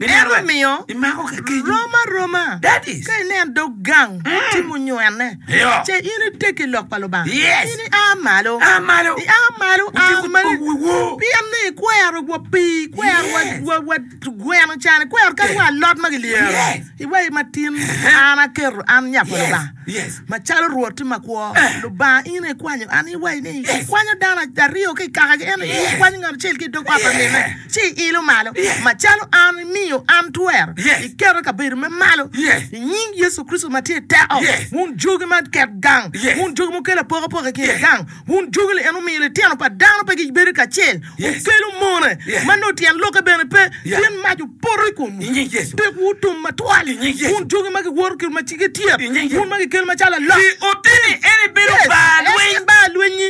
En omiyo rom aroma ka inen dog gang timo nywene, ce in iteggi i lok pa Lubanga, in ia malo, ia malo, a malo, pien ni ikwero wa pii, ikwero wa gweno can, ikwero kadi wa alot ma kilyero. Iwaci ma tin, an aketo an nya pa Lubanga macalo Rwotti makwo. Lubanga in aye ikwanyo, an iwaci ni ikwanyo dano aryo ki i kakagi, ento in ikwanyo ngat acel ki i dog ot pa minne. ci iilo malo, macalo an imiyo an twer, iketo kabedo me malo i nying Yecu Kricito ma tye i teko, wun jogi ma ket gang, wun jogi ma wukelo apokapoka i kin gang, wun jogi li en wumiyo litino pa dano pe gibedo kacel, wukelo mone ma nongo tyen lokke bene pe, pien mac opoto i komwu, pekwu otum matwal, wun jogi ma giwoto ki ma cigge tyet, wun ma gikelo macalo alok, Pi oteni eni bedo bar lweny. Yes, en baa lwenyi.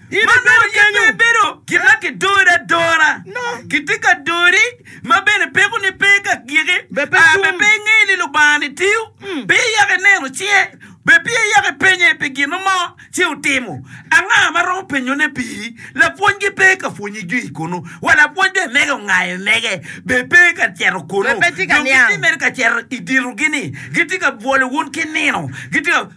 Ma nongo yam pe ibedo kit ma kidori adora. Kitye ka dori ma bene pekoni pe ka giki, aa bene pe ingeyo ni Lubanga-ni tiyo, pe iyako ineno cinge, bene pe iyako ipenye pi gin mo ci otimo. Anga ma romo penyone piri? Lapwonygi pe ka pwonyi jwi kunu, wa lapwony bene mege ongayo mege, bene pe ka cito kunu. Dong gitye mere ka cito i ditogi-ni, gitye ka bwolo wun ki nino, gitye ka.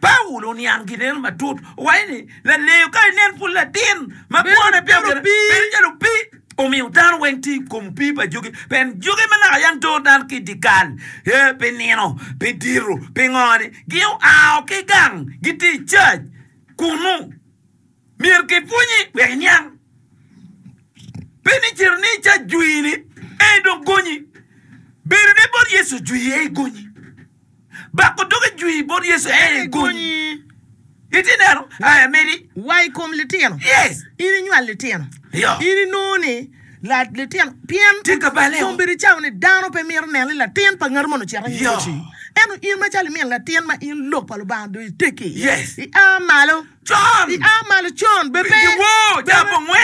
Paulo oniang gin eno matut. Owaco ni, Laleyo, ka inen pud latin ma kwone pe obedo bedo calo opii, omiyo dano weng tye i kom opii pa jogi, pien jogi ma naka yam toro dano ki i dyekal, ee, pi nino, pi diro, pi ngo-ni, gioao ki gang, gitye i cac kunnu. Myero kipwonyi wek iniang. Pe ni cito ni ca jwini ey dong gonyi. Bedo ne bot Yecu jwi ey gonyi. Bako dogi jwi bot Yecu ey gonyi. Iti neno aya medi. Wa i kom litino. Yes. In inywal litino. Yo. In inongo ni la litino pien. Tye ka bale o. Kombedi cawa ni dano pe mito neno ni latin pa ngati moni ocito anyim oci. Yo. Ento in macalo imin latin ma in lok pa Lubanga dong itegi. Yes. Ia malo. I a malo con bene pe,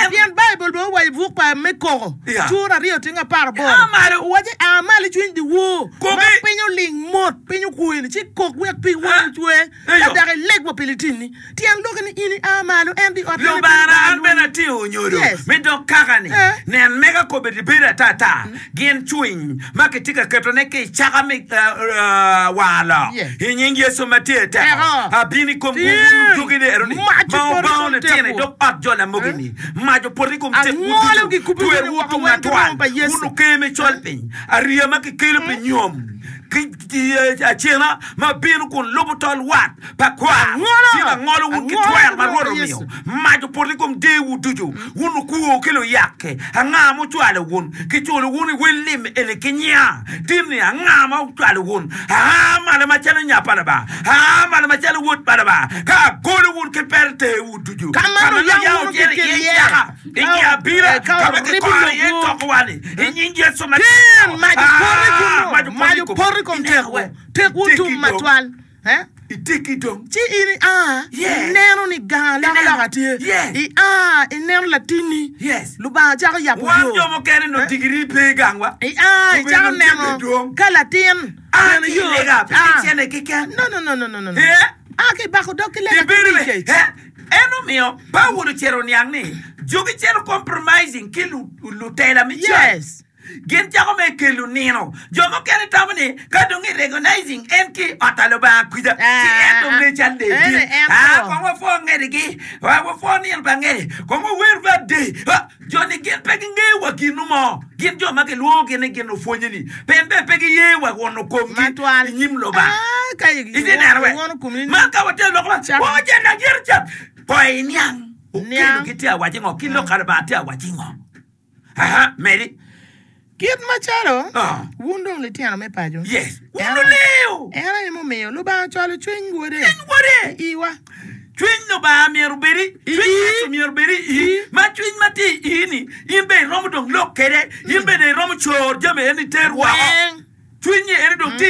pien Baibul bene owaco i buk pa me Koko, cura aryo tyeng apar aboro, owaco, I a malo icwiny dyewor, mak piny oling mot, piny okweni, ci ikok wek pig woni ocwe, ka dok ileg wa pi litinni. Tyen lok-ki ni in i a malo, ento i ot meno ibedo gaa lwongo. Gin cwiny ma kitye ka ketone ki i caka me war lok i nying Yecu ma tye teko, abino i kom wun ludugi leroni ma obango litino i dog ot jo lamogi-ni. Mac opoto i kom tekwu ducu, twerwu otum atwal, wun oker me colpiny, ariya ma kikelo pi nyom. Dyeci acena ma bino kun lubo tol wat pa kwaro tye ka ngolowu ki twer ma Rwot omiyo. Mac opoto i kom deewu ducu, wun okwo ki luyakke! Anga ma ocwalo wun? Kiculo wun i wel lim eni ki nya? Tin-ni anga ma ocwalo wun? Aa malo macalo nya pa Lubanga, aa malo macalo wod pa Lubanga, ka agolo wun ki peretewu ducu ka ma nuyao cente iye ceka. I nge abila ka wuribbi lobu, i nying Yecu me Najaret, mac opot i kom tekwu, tekwu tum matwal, ci in ia, ineno ni gang alokaloka tye, ia, ineno latinni, Lubanga cako yabo yo, ia, icako neno ka latin bene yo, a ki i bako dog ki lega keni kec. En omiyo Paulo cito oniang ni jogi cito compromising ki lutela me cal. Gin cako mere kelo nino. Jo mukene tamo ni ka dong i recognizing en ki i ot pa Lubanga kwija, ci en dong ngeyo cal lee dit. Kong wapwoo ngedigi, wapwoo nino pa ngede, kong wawer bab day. Joni gin pe gingeyo wa ginu mo. Gin jo ma gilwongogi ni gin opwonye-ni pien bene pe giye wa wono komgi i nyim Lubanga. Itye neno be? Man ka watye lok ma wongo cente adyere ca, kono iniang okelogi tye ka waco ngo, ki lok ka Lubanga tye ka waco ngo. Aa, medi. Kit macalo wun dong litino me paco, en aye mumiyo Lubanga ocwalo cwiny Wode i iwa. Cwiny Lubanga myero obed i cwiny Yecu myero obed i ii, ma cwiny ma tye i ii-ni in bene iromo dong lok kwede, in bene iromo coro jami eni iter woko. Cwiny-nyi eni dong tye i.